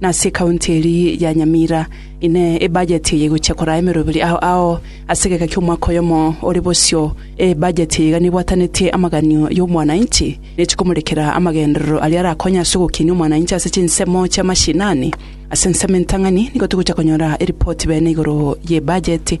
Nase ekaunti eria ya Nyamira inee ebajeti eye egochia koraa emeroberi ao ao ase egeka ki'omwaka oyomo ore bosio? Ee, ebajeti eye iga nebwatanetie amaganio y'omwananchi, ne chikomorekera amagenderero aria arakonye ase ogokinia omwananchi ase chinsemo chi'amashinani. Ase ensemo entang'ani nigo togochia konyora eripoti bene igoro y'ebajeti.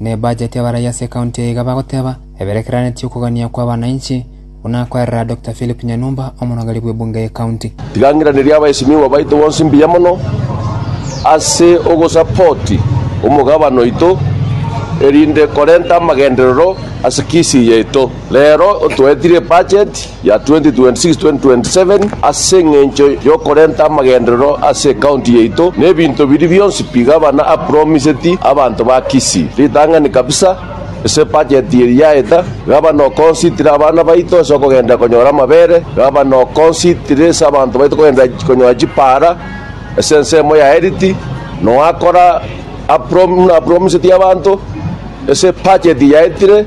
na ebajeti y'abaraiyo ase ekaunti eye iga bagoteba eberekeranetie okogania kw'abananchi, buna akwerera Dr Philip Nyanumba, omonogeri bw'ebunge y'ekaunti. Tiga ng'iranerie abaesinigwa baito bonsi mbuya mono ase ogosapoti omogabane oito, erinde korenta amagenderero ase Kisii yaito. Rero otoetire ebajeti ya 2026-2027 ase engencho yokorenta amagenderero ase ecounty yaito na ebinto biria bionsi pi gabana a promiseti abanto ba Kisii. Ritang'ani kabisa ase budget eri yaeta, gabana o consider abana baito ase okogenderera konyora amabere, gabana o consider ase abanto baito kogenderera konyora chipara ase ensemo ya Eriti, noakora a prom buna a promiseti abanto ase budget yaetire,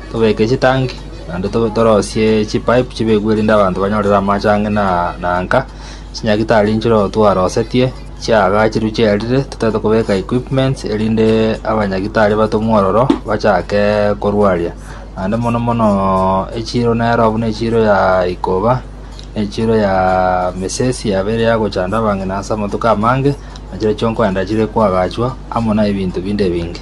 Tobeke chitanki, naende torosie chipaip chibekwe erinde abanto banyorere amache ang'e na nka, chinyagitari nchire oo twarosetie, chiaga chirwe chiarire, totaete kobeka equipments erinde abanyagitari batomwe ororo bachake korwaria, naende mono mono echiro nero buna echiro ya ikoba, na echiro ya mesesi yabeire yagochanda abang'ina ase amatuko amange, nachire chionkoenda chire koagachwa, amo na ebinto binde ebinge.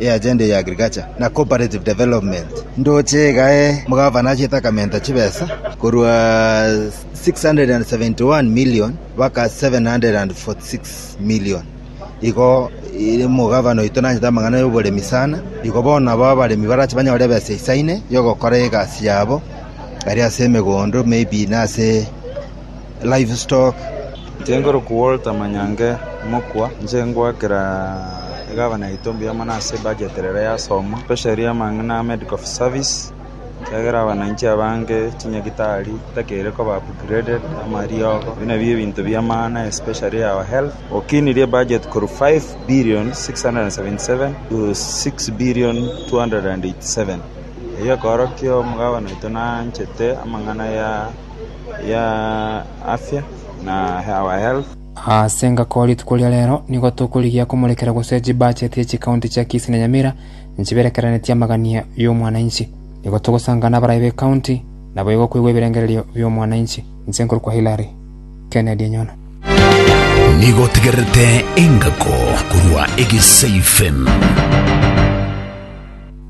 y'agenda ya agriculture na cooperative development ndoche iga omogavana achiete akamenta chibesa korwa 671 million mpaka 746 million igo omogavana oito nanyete amang'ana y'oboremi sana igo bono nabo abaremi barache banyore ebesa isaine yogokora egasi yabo ari ase emegondo maybe nase. livestock. Nchengoroku Walter Manyange mokwa, inche ngoakera egavana yaito mbuya mono ase ebudget rero yasomo, especially amang'ana a medical service, ekiagera abananchi abange chinyagitari chitakeire koba upgraded, amariogo, ebio nabio ebinto bia maana especially our health. Okinirie ebudget korwa 5,677,000,000 to 6,287,000,000 eyio ekeorokia omogabana oito naanchete amang'ana ya. ya Asia na our health. Ase engaki oo rituko ria rero nigo tokorigia komorekera gose chibacheti ye chikaunti chia Kisii na Nyamira nchiberekeraneti amagania y'omwananchi. Nigo togosangana n'abarai b'ekaunti nabo igo koigwa ebirengererio bi'omwananchi. Inche nkorokwa Hilary Kennedy Enyono. Nigo otegererete engako korwa Egesaifm.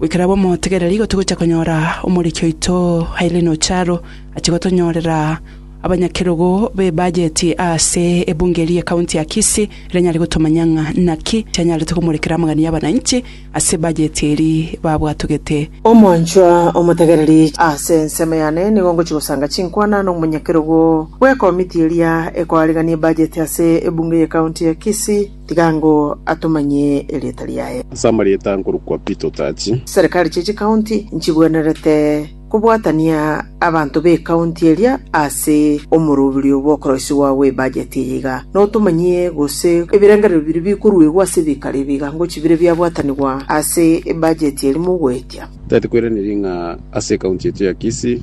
Goikerabwo motegereri igo togocha konyora omoriki oito Irene Ocharo achia gotonyorera abanyakerogo b'ebajeti ase ebunge ria County ya Kisii ere nyare gotomanyia ng'a naki chianyarete komorekera amagani y'abananchi ase ebajeti eri babwatogete. Omwanchwa omotegereri, ase ensemo yane nigo ngochia gosanga chinkwana nomonyakerogo bw'ekomiti eria ekoarigania ebajeti ase ebunge y'ecounty ya Kisii. Tiga ngo atomanyie erieta riaye. Ase amarieta nkorokwa Pito Tachi. Serikali chie chikaunti nchigwenerete kobwatania abanto b'ekaunti eria ase omoroberio bw'okoroisigwa gw'ebajeti eye iga notomanyie gose ebirengererio biria bikoruegwa ase ebikaro ebi iga ngo chibire biabwatanigwa ase ebajeti eri mogoetia. Tari koiraneria ng'a ase ekaunti yaito ya Kisii,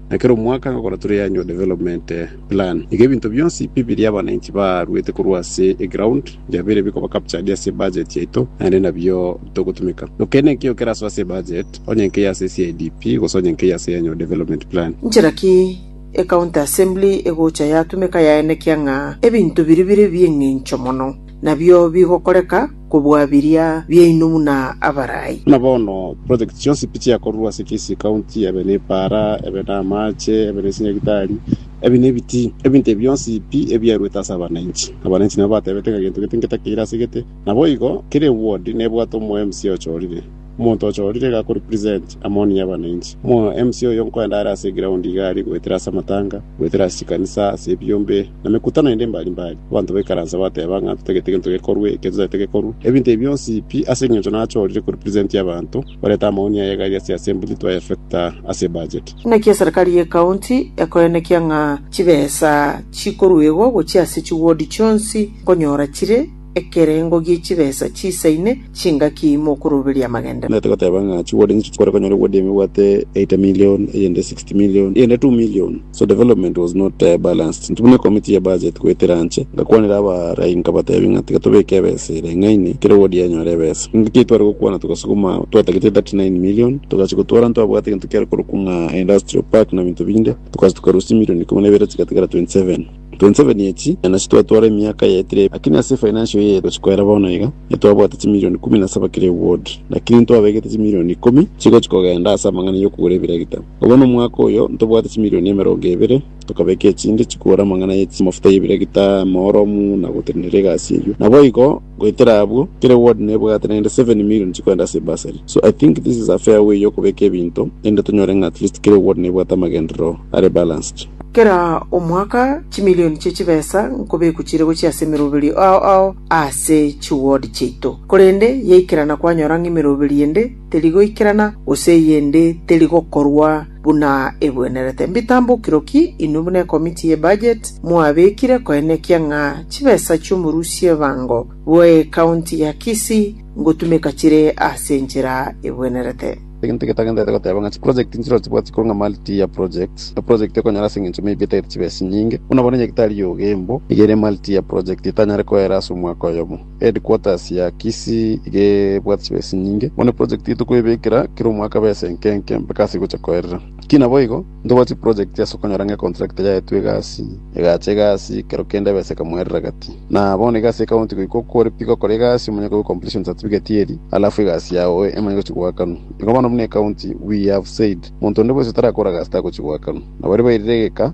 Na kera omwaka nkagora tore ya Annual Development Plan. Iga ebinto bionsi bibiri abananchi baaruete korwa ase eground biabeire bikoba captured ase ebudget yaito naende nabio bitogotumeka. Noke nenki eyio kerasoe ase ebudget, onye nkeiyo ase eCIDP gose onye nkeiyo ase Annual Development Plan. Nchera ki ecounty assembly egocha yatumeka yaenekia ng'a ebinto biri bire bi'eng'encho mono? nabio bigokoreka kobua biria biaino buna abarai. Buna bono, projects chionsi pi chiakorwa ase Kisii County, ebe nepaara, ebe namaache, ebe nechinyagitari, ebi nebitii, ebinto ebi bionsi pi ebiaruete ase abananchi. Abananchi nabo batebete ng'a gento gete ngetakeire ase gete, naboigo kera eward nebwate omo MC ochorire. Omonto ochorire iga akorepresent amaoni y'abananchi. Omwa-MC oyo nkoende are ase eground iga aria goetera ase amatanga, goetera ase chikanisa, ase ebiombe, na mekutano ende mbari mbari. Abanto baikaransa bateba ng'a ntotagete gento gekorwe, eke totagete gekorwe. Ebinto ebi bionsi pi ase eng'encho nachorire korepresent abanto, barete amaoni aye iga aria ase assembly twaefecta ase ebudget. Naki eserikari y'ecounty ekoenekia ng'a chibesa chikoruegwa gochia ase chiward chionsi nkonyora chire. Ekerengo gie chibesa chiisaine chingaki mokoroberia amagenderero? Naete goteba ng'a chiwarding echi chikore konyora eward ime ebwate eighty million, eyende sixty million, eyende two million, so development was not balanced. Intwe buna ecommittee ya budget goetera anche ngakwanera abaaraai nkabatebia ng'a tiga tobeke ebesa ere ng'aini kera eward enyore ebesa. Engaki eyio tware gokwana togasuguma twatagete thirty nine million togachia gotwara ntwabwate egento kiare korokwa ng'a industrial park na binto binde togacha tokarusia million ikomi na ibere chigatigara twenty seven. 27 echi, na nasi twatwara emiaka yaetire, lakini ase efainansio eye togochia koera bono iga, nitwabwate chimilioni ikomi na saba kera ewod, lakini ntwabegete chimilioni ikomi chigochia kogenda ase amang'ana y'okogora ebiregita. Obo nomwaka oyo ntobwate chimilioni emerongo ebere, tokabeka echinde chikogora amang'ana ye chimafuta y'ebiregita, mooromu, na gotenenera egasi eyio. Naboigo. Goetera abwo, kera ward nebwate naende seven million chikoenda ase bursary, so I think this is a fair way yokobeka ebinto erinde tonyore ng'a at least kera ward nebwate amagenderero are balanced. Kera omwaka chimilioni chie chibesa nkobekwa chire gochia ase emeroberio ao ao ase chiward chiaito, korende yaikerana kwanyora ng'a emeroberio ende teri goikerana gose eyende teri gokorwa, Buna egwenerete mbitambokirwe ki inwe buna ekomiti ye budget mwabekire koenekia ng'a chibesa chi'omorusia ebango bwe county ya Kisii ngotumeka chire ase enchera egwenerete. Egento getagenderete goteba ng'a chiproject nchirori chibwati korwa ng'a mali tiya project, na project ekonyara ase engencho maybe etagete chibesa nyinge, buna bono enyagetari y'ogeimbo nigo ere mali tiya project etanyare koera ase omwaka oyomo. Headquarters ya Kisii iga ebwate chibesa enyinge, bono eproject eye tokoebekera kera omwaka besa enke enke mpaka ase egocha koerera. Ki naboigo, ntobwate chiproject ase okonyora ng'a econtractor yaetwe egasi, egacha egasi, kero kende ebesa ekamoerera gati. Na bono iga ase ecounty goika oko ore pi gokora egasi omanye koigwa completion certificate eri, alafu egasi yao emanye gochia goakanwa. Igo bono buna ecounty we have said monto onde bwesi otarakora gasi tagochia goakanwa. Nabaria bairire egeka,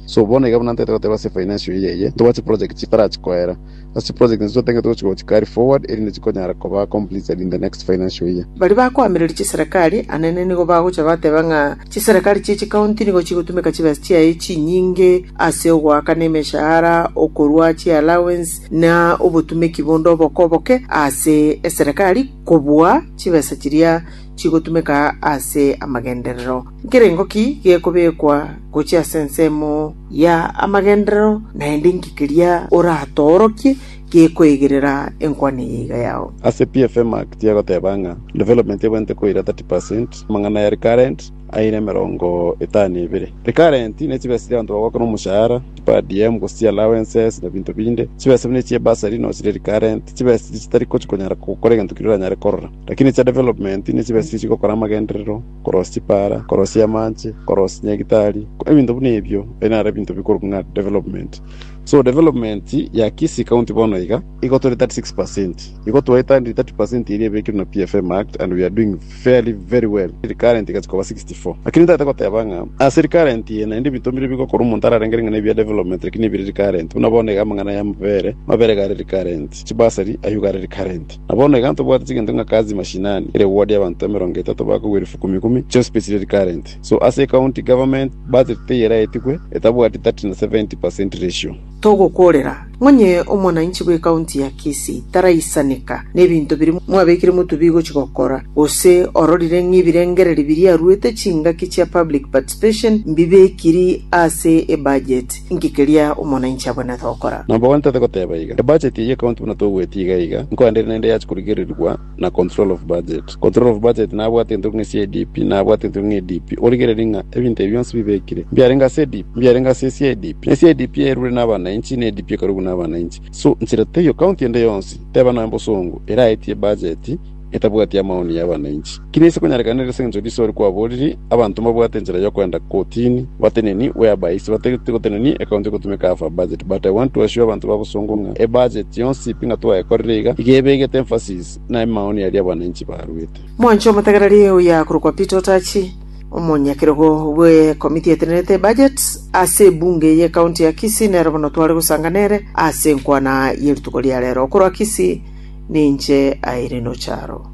So bono iga buna ntaete goteba ase efainensio eye eye, togwe chiprojekti chitarachi koera. Ase chiprojekti inche totagete gochia gochi carry forward erinde chikonyara koba completed in the next financial year. Baria bakoamereria chiserekari anene nigo bagocha bateba ng'a chiserekari chie chikaunti nigo chigotumeka chibesa chiaye chinyinge ase ogoaka nemeshahara, okorua chiallowance, na obotumeki bonde oboko oboke ase eserekari kobua chibesa chiria chigotumeka ase amagenderero. Nkerengo ki gekobekwa gochia ase ensemo ya amagenderero, naende inki keria oratoorokie gekoegerera enkwana eye iga yao? Ase PFMac tiagoteba ng'a development ebwenerete koira 30 percent, amang'ana ya recurrent aira emerongo etano na ebere. Recurrent ne chibesa chiria abanto bagoaka na omoshahara, chi per diem, gose chi allowances na binto binde. Chibesa buna echie bursary no chire recurrent, chibesa chiria chitari gochi konyara gokora egento keria oranyare korora. Lakini chia development ne chibesa chiria chigokora amagenderero. korosia chipara, korosia amache, korosia nyagitari, ebinto buna ebio ebi naro ebinto bikorokwa ng'a development. So development ya Kisii County bono iga igotoria 36%, igotoeta ndi 30% eria ebekirwe na PFM Act and we are doing fairly very well. Recurrent igachia koba 64. Lakini ntagete goteba ng'a ase recurrent eye naende ebinto mbire bigokora omonto ararengere ng'a nebia development lakini nebire recurrent. Buna bono iga amang'ana y'amabere, amabere iga are recurrent, chibursary ayio iga are recurrent. Na bono iga ntobwate chigento ng'a kazi mashinani ere ward y'abanto emerongo etato bakogwa elifu ikomi ikomi chia osibeti riri current. So ase ecounty government budget teyeraetigwe, etabwati 30 na 70 per cent ratio. Togokorera ng'onye omwananchi bw'ecounty ya Kisii taraisaneka nebinto biria mwabekire motubii gochia gokora, gose ororire ng'a ebirengererio biria aruete chingaki chia public participation mbibekiri ase ebudget. Inki keria omonanchi abwenerete gokora? Nabo gwantate goteba iga, ebudget eye account buna tobueti iga iga, nko ande ere naende yache korigererigwa na control of budget. Control of budget nabwate entoki ng'a CIDP, nabwate entoki ng'a EDP. Origereri ng'a ebinto ebi bionsi bibekire, mbiarenge ase EDP, mbiarenge ase CIDP. Ne CIDP yairure nabanainchi, ne EDP ekarugwa nabanainchi. So, nchera teiyo account ende yonsi, teba nonya bosongo, eraetie ebudget, etabwati amaoni y'abananchi. Ki nise konyarekana ere sengencho riso ore kwaboriri? Abanto mbabwate enchera y'okoenda kotini, bateneni where by ise batagete gotenenia account egotumeka half a budget. But I want to assure abanto ba bosongo ng'a e budget yonsi pi ng'a twayekorire iga, iga ebegete emphasis na amaoni aria abananchi baruete. Mwanche omotegereri oya korokwa Peter Otachi, omonyakerogo bwe committee etenerete ebudget ase ebunge ye county ya Kisii nero bono tware gosanga nere ase enkwana ye rituko ria rero. Okorwa Kisii. Ninche aire nocharo.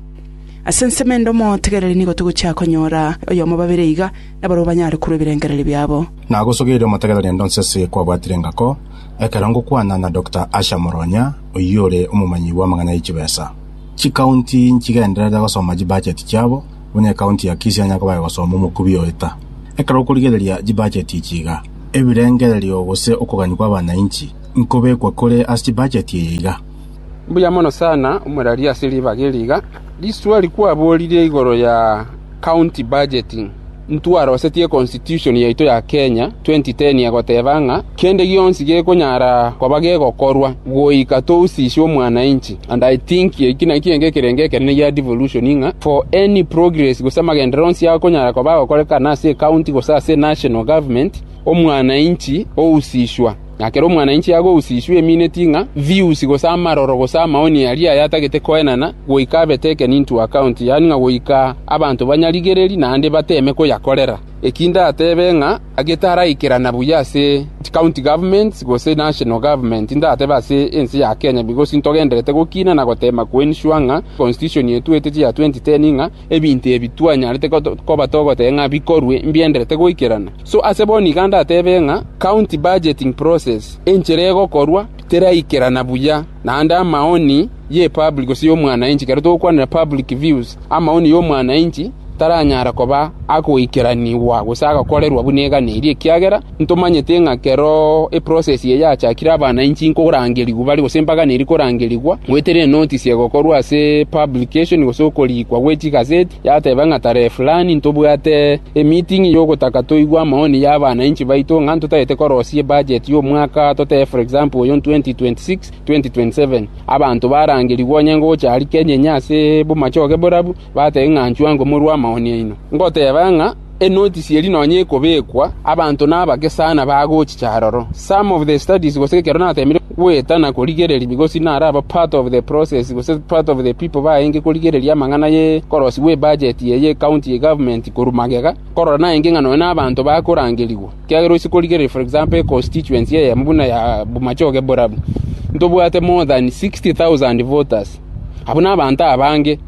Ase ensemo ende omotegereri nigo togochia konyora oyomo babere iga, nabarabwo banyare korwa ebirengererio biabo. Nagosogeirie omotegereri ende onsi ase kwabwatire engako, ekero ngokwana na Doctor Asha Moronya, oyio ore omomanyi bw'amang'ana ye chibesa. Chikaunti nchigenderere gosoma chibacheti chiabo, buna ekaunti ya Kisii onye koba egosoma omokubi oeta. Ekero okorigereria chibacheti echi iga, ebirengererio gose okogania kw'abanainchi nkobekwa kore ase chibacheti eye iga. Mbuya mono sana omorari ase ribaga eri iga. Risueri kwaborire igoro ya county budget, intwarosetie constitution yaito ya Kenya 2010 egoteba ng'a kende gionsi gekonyara koba gegokorwa goika tousiswe omwananchi and I think eki nakio enga ekerengo ekenene gia devolution ng'a for any progress gose amagenderero onsi akonyara koba agokorekana ase ecounty gose ase national government omwananchi ousiswa. Na ekero omwananchi agousiswa emineti ng'a viusi gose amaroro gose amaoni aria ayatagete koenana, goika abe taken into account, yaani ng'a goika abanto banyarigererie naende bateeme koyakorera. Eki ndatebe ng'a getaraikerana buya ase chicounty governments gose national government, ndatebe ase ense ya Kenya, because ntogendererete gokina na goteema koensure ng'a constitution etwete chia 2010 ng'a, Ebinto ebi twanyarete koba togoteba ng'a bikorwe mbienderete goikerana. So ase bono iga ndatebe ng'a county budgeting process enchera egokorwa teraikerana buya, naende amaoni y'epublic gose y'omwanainchi, ekero togokwanera public views, amaoni y'omwanainchi taranyara koba agoikeranigwa gose agakorerwa buna eganeirie, ekiagera Ntomanyete ng'a ekero eprosesi eye yachakire abana inche inkorangerigwa bare, gose embagana eria ikorangerigwa, gweterire notisi egokorwa ase publication, gose okoriikwa gwe chigaseti, yateba ng'a tarehe fulani ntobwate emeeting y'ogotaka toigwe amaoni y'abana inche baito ng'a ntotagete korosia ebudget y'omwaka totebe for example oyo 2026, 2027. Abanto barangerigwe onye ngocha aria Kenya ase bomache oge borabu, batebe ng'a nchwango morue amaoni aino. Ngoteba ng'a. Enotisi eria nonya ekobekwa, abanto na abake sana bagochicha aroro. Some of the studies gose ekero nateemire goeta na korigereria bigosi naraba part of the process gose part of the people baenge korigereria amang'ana ye korosi gwe budget eye ye county ye government korwa magega, nkorora naenge ng'a nonya nabanto bakorangerigwa. Ekiagera ase korigereria for example econstituency eyemo buna ya Bomachoge Borabu, ntobwate more than 60,000 voters. Abwo nabanto abange.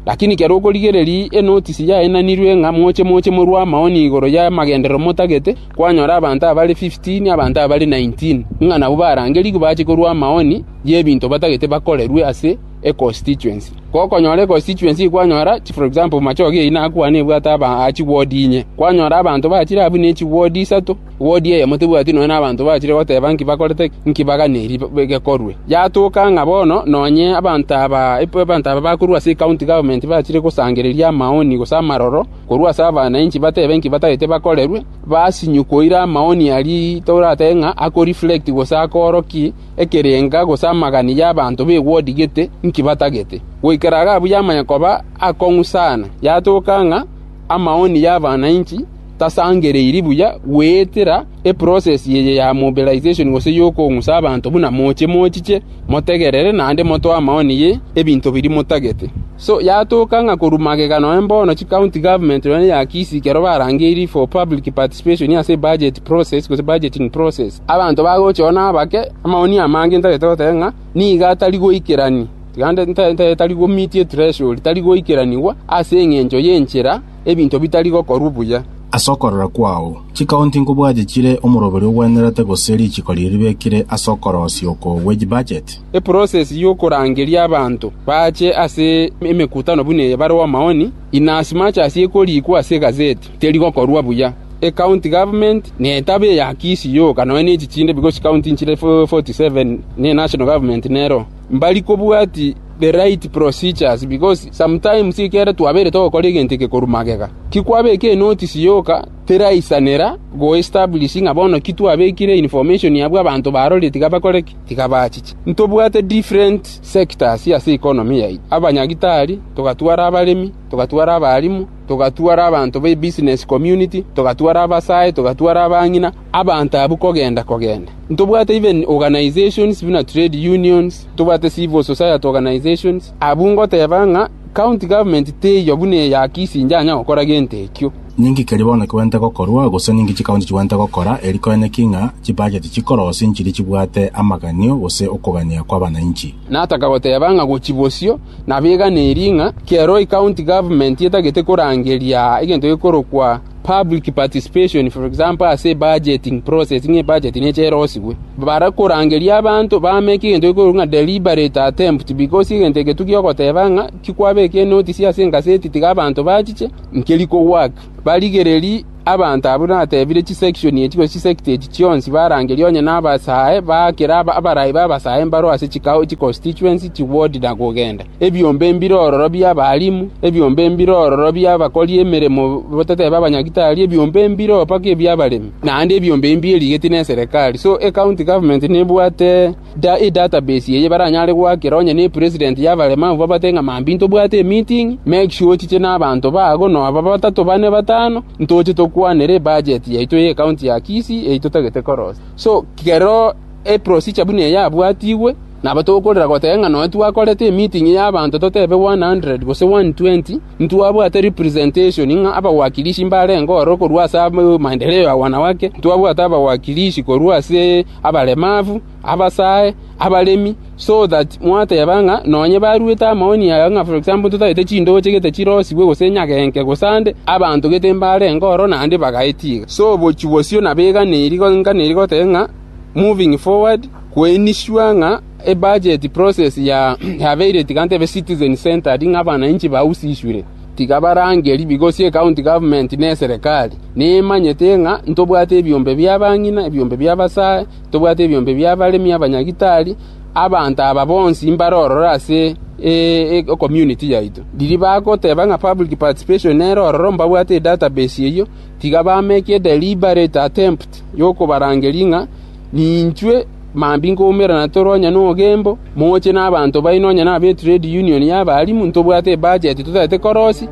Lakini ekero okorigereria enotisi yainanirwe ng'a moche moche morue amaoni igoro y'amagenderero motagete, kwanyora abanto abare fifteen, abanto abare nineteen, ng'a nabwo barangerigwe bache korua amaoni y'ebinto batagete bakorerwe ase econstituency. Gokonyora econstituency eye kwanyora, for example, Machoge eyio nakwane ebwate aba chiward inye. Kwanyora abanto bachire abwo ne chiward isato. Odiemo tebwati nonya nabanto bachire goteba inki bakorete, inki baganeiri gekorwe. Yatoka ng'a bono nonye abanto aba bakorwa ase ekaunti gavumenti bachire gosangereria amaoni gose amaroro korwa ase abananchi batebe inki batagete bakorerwe, basinywe koira amaoni aria toratebe ng'a ako-reflect gose akoorokia ekerenga gose amagani y'abanto b'ewodi gete inki batagete. Goika iga abuya amanye koba akong'u sana. Yatoka ng'a Amaoni y'abanainchi tasangereiri buya goetera eprocess eye ya mobilization gose y'okong'usa abanto buna moche mochiche motegerere naende motoe amaoni ye ebinto biria motagete. So yatoka ng'a korwa magega nonya mbono chicounty government nonya ya Kisii ekero barangeirie for public participation ase ebudget process gose budgeting process, abanto bagocha oo nabake amaoni amange ntagete goteba ng'a nigo atari goikerania, naende tari gomitia etreasure, tari goikeranigwa ase engencho y'enchera ebinto bitari gokorwa buya. Ase okorora kwao, chikaonti nkobwache chire omoroberi ogwenerete gose richiko riria ribekire ase okorosia oko wage budget? Eprocess y'okorangeria abanto bache ase emekutano buna eye bareo amaoni, in as much as ekorikwa ase egazeti. Teri gokorua buya. Ecounty government netabe eya Kisii yoka nonya ne chichinde because chicounty nchire 47 ne national government nero mbari kobwati the right procedures because sometimes ekero twabeire togokora egento eke korwa magega tikwabeka enotice yoka teraisanera go establish ng'a bono ki twabekire information abwo abanto barorire tiga bakore ki tiga bachiche. Ntobwate different sectors ase economy yaito, abanyagitari, togatwara abaremi, togatwara abarimu, togatwara abanto b'ebisinesi community, togatwara abasae, togatwara abang'ina, abanto abwo kogenda-kogenda. Ntobwate even organisations buna trade unions, ntobwate civil society organisations. Abwo ngoteba ng'a county government teiyo buna eya Kisii njanya gokora gento ekio. Ninki keria bono kigwenerete gokorwa, gose ninki chikaunti chigwenerete gokora, eri koene ki ng'a chibacheti chikorosia enchiri chibwate amaganio gose okogania kw'abanainchi? Nataka goteba ng'a gochia bosio, Nabeganeiri ng'a kiaro ecounty government etagete korangeria egento gekorokwa public participation, for example, ase ebudgeting process, ng'a ebudget neche erosigwe. Bare korangeria abanto bameke egento gekorokwa ng'a deliberate attempt, because egento eke tu giogoteba ng'a tikwabeka enotice ase egaseti tiga abanto bachiche, nkeri kogwaka. Barigererie. Abanto abwo natebire chisection echi gose chisect echi chionsi barangeria onye nabasae baakera abarai b'abasae mbareo ase chikao, chiconstituency, chiward na kogenda. Ebiombe mbire ororo bi'abalimu, ebiombe mbire ororo bi'abakori emeremo batatebe abanyagitari, ebiombe mbire oo mpaka ebi'abaremi, naende ebiombe mbie erigeti neserekari. So ecounty government nebwate. edatabase eye baranyare goakera onye nepresident y'abaremabu babate ng'a mambia intobwate emeeting, make sure ochiche nabanto bago nonya batato bane batano, ntoche tokwanere ebajet yaito y'ecounty ya Kisii eye totagete korosia. So kero eprosijur buna eye yabwatigwe, nabo tokorera goteba ng'a nonya twakorete emeeting y'abanto totebe one hundred gose one twenty, ntwabwate representation ng'a abawakilishi mbarenge oro korwa ase amaendeleo ya wanawake, ntwabwate abawakilishi korwa ase. abaremabu, abasae, abaremi, so that mwateba ng'a nonye baruete amaoni aya ng'a for example totagete chindooche gete chirosigwe gose nyagenke gose ande, abanto gete mbarenge oro naende bagaeti iga. So bochia bosio nabeganeiri nganeri goteba ng'a moving forward kwe ensure ng'a ebudget process yabeire tiga ntebe citizen centred ng'a abananchi bausisure. Tiga barangeri bigosie ecounty government ne eserekari. Nimanyete ng'a ntobwate ebiombe bi'abang'ina, ebiombe bi'abasae, ntobwate ebiombe bi'abaremi abanyagitari. Abanto aba bonsi mbare ororo ase ecommunity yaito. Riria bagoteba ng'a public participation nere ororo mbabwate edatabase eyio, tiga bameke edeliberate attempt y'okobarangeria ng'a Ninchwe mambia nkoumerana toro onye nogembo, moche nabanto baino onye nabe eTrade Union y'abarimu, ntobwate ebacheti totaete korosi,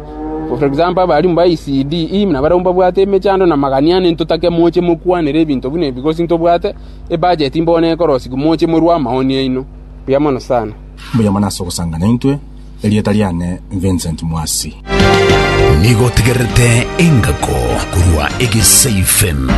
for example, abarimu ba ECD, na barabwo mbabwate emechando na magania ane, ntotake moche mokwanere ebinto buna ebi, gose ntobwate ebacheti mbono ekorosigwa, moche morue amaoni aino. Mbuya mono sana. Mbuya mono ase ogosanga naintwe. Erieta riane Vincent Mwasi. Nigo otegererete engako korwa egesaifm.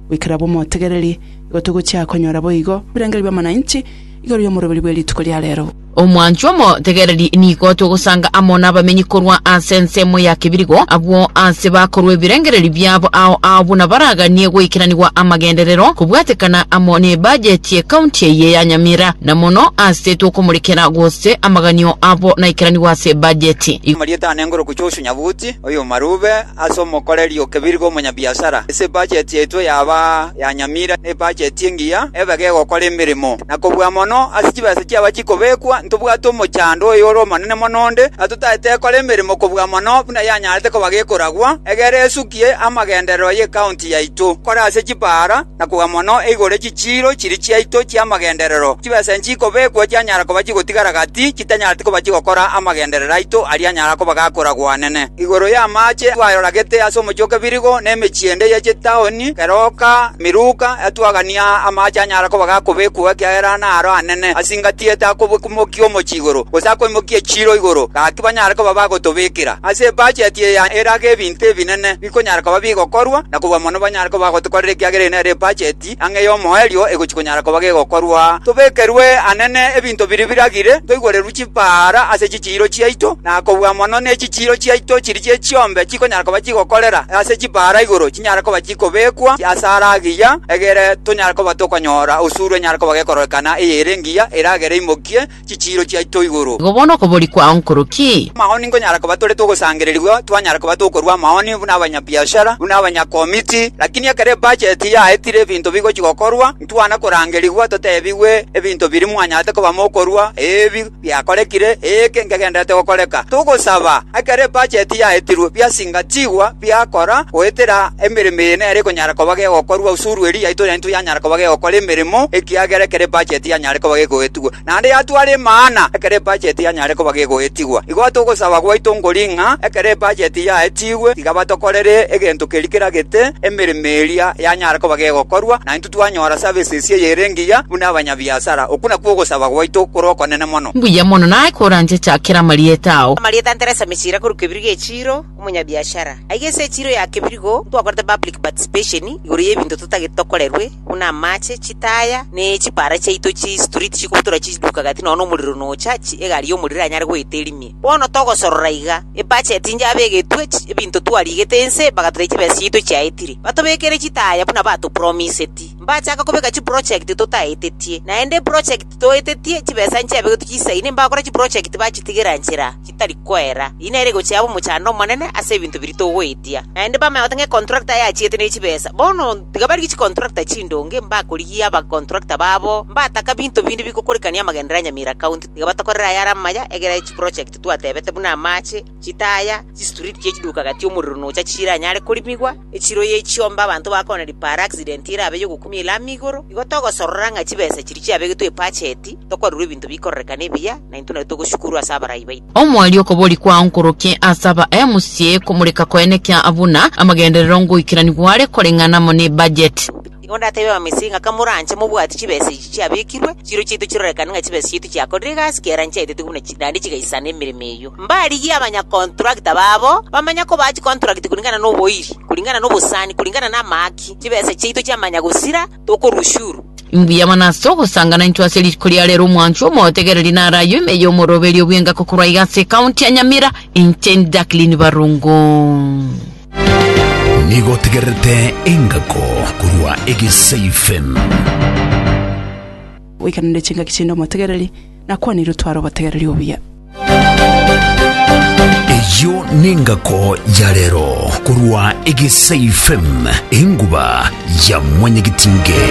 Goika raba omotegereri, igo togochia konyora boigo ebirengererio bi'amananchi igoro y'omoroberi bwe rituko ria reero. Omwanchwa omotegereri nigo togosanga amo nabamenyi korwa ase ensemo ya kebirigo, abwo aase bakorwa ebirengererio biabo ao ao buna baraganie goikeranigwa amagenderero kobwatekana amo n'ebajeti y'ekaunti eye ya Nyamira. na mono asetwe okomorekera gose amaganio abo naikeranigwe ase ebajeti. Igo Amarieta ane ngoroku Joshua Nyabuti, oyomarube ase omokoreri o Kebirigwa omonyabiasara. Ase ebajeti yaito yaba ya nyamira na ebajeti engiya ebe gegokora emeremo. Na kobua mono ase chibesa chiaba chikobekwa, ntobwate omochando oyore omonene mono onde atotaete ekore emeremo kobua mono buna yanyarete koba gekoragwa, egere esukie amagendererwa y'ecounty yaito. Kore ase chipaara, na koa mono igoro chichiiro chiria chiaito chi'amagenderero chibesa nchikobekwa chianyara koba chigotigara gati chitanyareti koba chigokora amagenderero aito aria anyara koba gakora gwanene. Igoro y'amaache twaroragete ase omochie o Kebirigo na emechie ende ye chitaoni keroka miruka etwagania amaache anyara koba gakobekwa ekiagera naro anene ase ingati etakobwekimokia omochie igoro gose akoimokia echiiro igoro gaki banyare koba bagotobekera ase ebacheti eye erage ebinto ebinene bikonyara koba bigokorwa, na kobua mono banyare koba bagotokorera ekiagera eye nere ebacheti ang'e y'omoerio egochia konyara koba gegokorwa. Tobekerwe anene ebinto biria biragire, toigorerwe chipaara ase chichiiro chiaito, na kobua mono nechichiiro chiaito chiria chie chiombe chikonyara koba chigokorera ase chipaara igoro chinyare koba chikobekwa ase ara agiya, egere tonyare koba tokonyora osuru enyare koba gekororekana eye ere engiya eragere imokie, chichiiro chiaito igoro. Igo bono okobori kwao nkoro ki? Amaoni nkonyara koba tore togosangererigwa, twanyara koba tokorua amaoni buna abanyabiashara, buna abanyakomiti, lakini ekero ebacheti yaetire ebinto bigochia gokorwa, ntwana korangerigwa totebigwe ebinto biria mwanyarete koba mokorua, ebi biakorekire, eke nkegenderete gokoreka. Togosaba, ekero ebacheti yaetirwe, biasingatigwa, biakora, goetera emeremo eye nere ekonyara koba gegokorwa, usuru eria yaito yaito yanyara koba gegokora emeremo, ekiagera ekero ebacheti yanyare koba gegoetigwa, naende yatwara emana ekero ebacheti yanyare koba gegoetigwa. Igo ase ogosaba gwaito nkori ng'a ekero ebacheti yaetigwe, tiga batokorere egento keria keragete emeremo eria yanyare koba gegokorwa, na intwe twanyora services eye ere engiya buna abanyabiasara. Okwo nakwo ogosaba gwaito kore okonene mono. Mbuya mono naye koranchecha kera amarieta ao. Amarieta ntere ase emechiro akorwa kebiri ge'echiro. omonyabiashara, aiga ase echiro ya kebirigo ntwakorete public participation igoro y'ebinto totagete tokorerwe, buna amache, chitaya, ne chipara chiaito chistreet chikobutora chiduka gati nonya nomorero nocha chi egari y'omorero eranyare goeta erimie. Bono togosorora iga, ebudget inche abegetwe chi ebinto twarigete ense bagatotebia chibesa chiaito chiaetire, batobekere chitaya buna batopromiseti. Mbachaka kobeka chiproject totaetetie, naende eproject toetetie chibesa nchiabegetwe chisaine mbakore chiproject bachitigera nchera. tari kwera. Eye nere egochia abe omochando omonene ase ebinto biria togoetia. Naende bamanye goteba ng'a econtractor eye achiete ne chibesa. Bono tiga barigie chicontractor chindonge, mbakorigia abacontractor babo, mbataka binto binde bigokurekania amagenderero a Nyamira County. Tiga batokorere ayare amaya, egera chiprojekti twatebete buna amache, chitaya, chistreet chia chiduka gati omorero nocha chiranyare korimigwa. Echiroye echiombe abanto bakona ripaara accident erabe y'ogokumia ere amo igoro, igo togosorora ng'a chibesa echiria chiabegetwe ebacheti, tokorerwa ebinto bikorerekana ebiya, na intwe nario togoshukurwa ase abarai baito. Omwaria okobori kwao nkorokie ase aba mca komoreka koene kia buna amagenderero ngoikerani gware koreng'ana amo ne budget. Nigo ndateebia Abamisiri ng'a kamoranche mobwati chibesa echi chiabekirwe, chiiro chiaito chirorekane ng'a chibesa chiaito chiakorire egasi ki'erangi chiaetetwe buna chi, naende chigaisana emeremo eyio. Mbarigie abanyakontrakta babo bamanye kobaa chikontrakti kuringana noboiri, kuringana nobosani, kuringana namahaki, chibesa chiaito chi'amanya gosira, tokorwa ushuru. Imbuya mono ase ogosangana intwe ase riko ria rero omwanchwa omotegereri naro ayio ime y'omoroberio bw'engaki korwa iga ase ekaunti ya Nyamira, inche ndi Jacqueline Barongo. Nigo otegererete engako korwa egesaifen. Oikeranie chingaki chinde omotegereri, nakwanire otware obotegereri obuya. Eyio nengako ya rero korwa egesaifen, enguba ya mwanyagetinge.